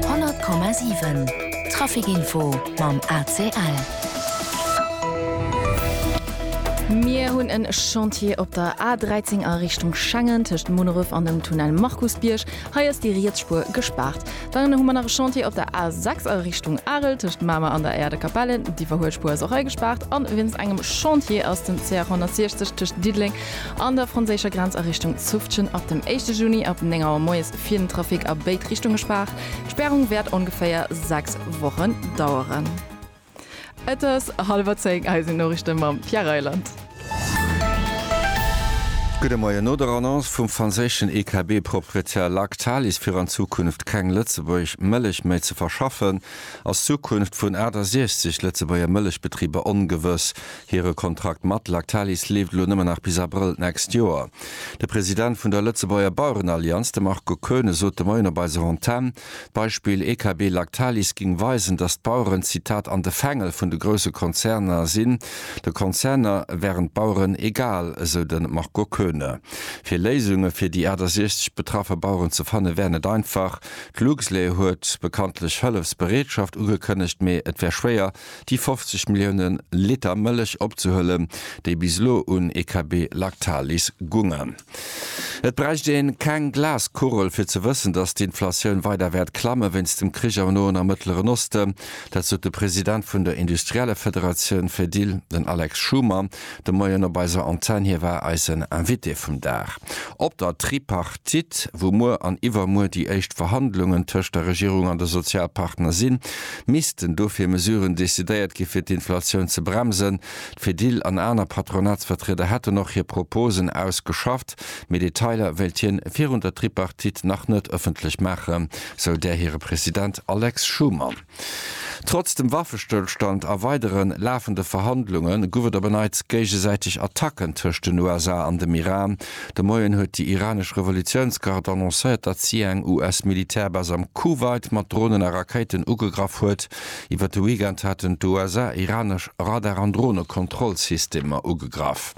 100,7 Trafic-Info mam ACL. Mir hunn e Chantier op der A13 a Richtung Schengen tëscht Munneref an dem Tunnel Markusbierg. Hei ass déi riets Spuer gespaart. Dann hu mer nach e Chantier op der A6 a Richtung Arel tëscht Mamer an der Aire de Capelle. Déi verhuelt Spuer ass och hei gespaart. A wéinst engem Chantier ass den CH 160 tëscht Diddeleng an der franséischer Grenz a Richtung Zufftgen ab dem éischte Juni ab 9 Auer moies fir den Trafic a béid Richtunge spaart. D'Spärung wäert ongeféier 6 Wochen daueren. Et ass hallwer 10, hei sinn d'Noriichte mam Pierre Reyland. Gudde Moien. No der Annonce vum franséischen EKB-Proprietär Lactalis fir an Zukunft keng Lëtzebuerg Mëllech méi ze verschaffen, ass d'Zukunft vun 68 Lëtzebuerger Mëllechbetriber ongewëss. Hire Kontrakt mat Lactalis leeft elo nëmmen nach bis Abrëll d'nächst Joer. De President vun der Lëtzebuerger Bauerenallianz, de Marco Koeune, sot de Moien op eiser Antenn, d'Beispill EKB-Lactalis géing weisen, datt d'Baueren, Zitat, an de Fängel vun de grousse Konzerner sinn. De Konzerner wären d'Baueren egal, esou de Marco Koeune. Fir Léisunge fir déi 68 betraffe Baueren ze fanne wär net einfach. D'Luxlait huet bekanntlech Hëllefsbereetschaft ugekënnegt, mee et wär schwéier, déi 50 Milliounen Liter Mëllech opzehuelen, déi bis elo un EKB Lactalis gungen. Et bräicht een keng Glaskugel fir ze wëssen, dass d'Inflatioun weider wäert klammen, wéinst dem Krich am Noen a Mëttleren Osten. Dat sot de President vun der Industriellefederatioun Fedil, den Alex Schoomer. De Moien op eiser Antenn. Hie war eisen Invité vum Dag op der Tripartite, wou muer an iwwermuer déi éischt Verhandlungen tëscht der Regierung an de Sozialpartner sinn. Missten dofir Mesuren decidéiert gi fir d'Inflatioun ze bremsen? D'Fedil an aner Patronatsvertrieder hätten och hir Proposen ausgeschafft, mee Detailer wéilt hien virun der Tripartite nach net ëffentlech maachen, sou där hire President Alex Schumann. Trotz dem Waffestëllstand a weidere lafende Verhandlunge gouf et op en Neits géigesäiteg Attacken tëscht den USA an dem Iran. De Moien huet déi iranesch Revolutiounsgard annoncéiert, datt si eng US-Militärbase am Kuwait mat Dronen a Rakéiten ugegraff huet. Iwwer de Weekend haten d'USA iranesch Radar an Dronekontrollsystemer ugegraff.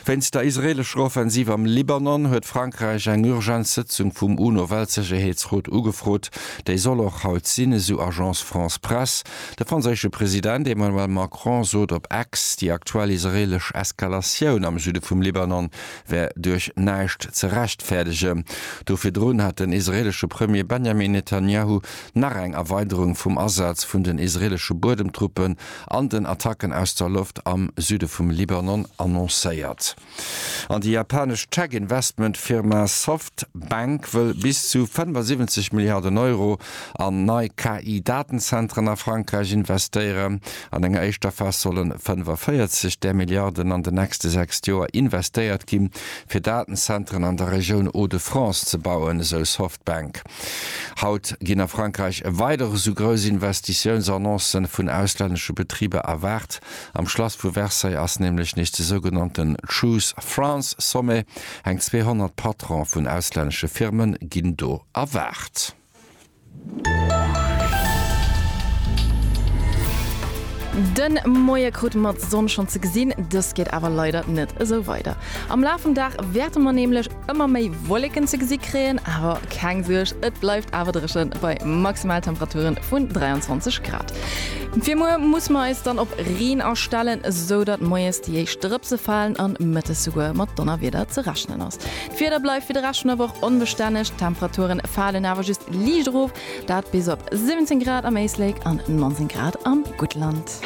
Wéinst der israeelescher Offensiv am Libanon huet Frankräich eng urgent Sëtzung vum UNO-Weltsécherheetsrot ugefrot. Déi soll och haut sinn, esou Agence France-Presse. De franséische President Emmanuel Macron sot op X, déi aktuell israeelesch Eskalatioun am Süde vum Libanon wär duerch näischt ze rechtfäerdegen. Do virdrun hat den israeelesche Premier Benjamin Netanjahu nach eng Erweiderung vum Asaz vun den israeelesche Buedemtruppen an den Attacken aus der Loft am Süde vum Libanon annoncéiert. An déi japanesch Tech-Investment-Firma Softbank wëll bis zu 75 Milliarden Euro an nei KI-Datenzentren a Frankräich investéieren. An enger éischter Phas solle 45 där Milliarden an den nächste sechst Joer investéiert ginn, fir Datenzentren an der Regioun Hauts-de-France ze bauen, esou Softbank. Haut ginn a Frankräich weider esou grouss Investitiounsannoncen vun auslännesche Betriber erwaart. Am Schlass vu Versailles ass nämlech nees de sougenannten Choose France Sommet. Eng 200 Patrone vun auslännesche Firme ginn do erwaart. De Moie krute mer d'Sonn schonn ze gesinn, dëst geet awer leider net esou weider. Am Laf vum Dag wäerte mer nämlech. Ëmmer méi Wolleken ze gesi kréien, awer keng Suerg, et bleift awer dréchen bei Maximaltemperature vun 23 Grad. Fir muer musse mer eis dann op Reen astellen, esou datt moies déi éischt Drëpse falen an mëttes souguer mat Donnerwieder ze rechnen ass. D'Wieder bleift fir de Rescht vun der Woch onbestänneg, d'Temperature falen awer just liicht erof, dat bis op 17 Grad am Éislek an 19 Grad am Guttland.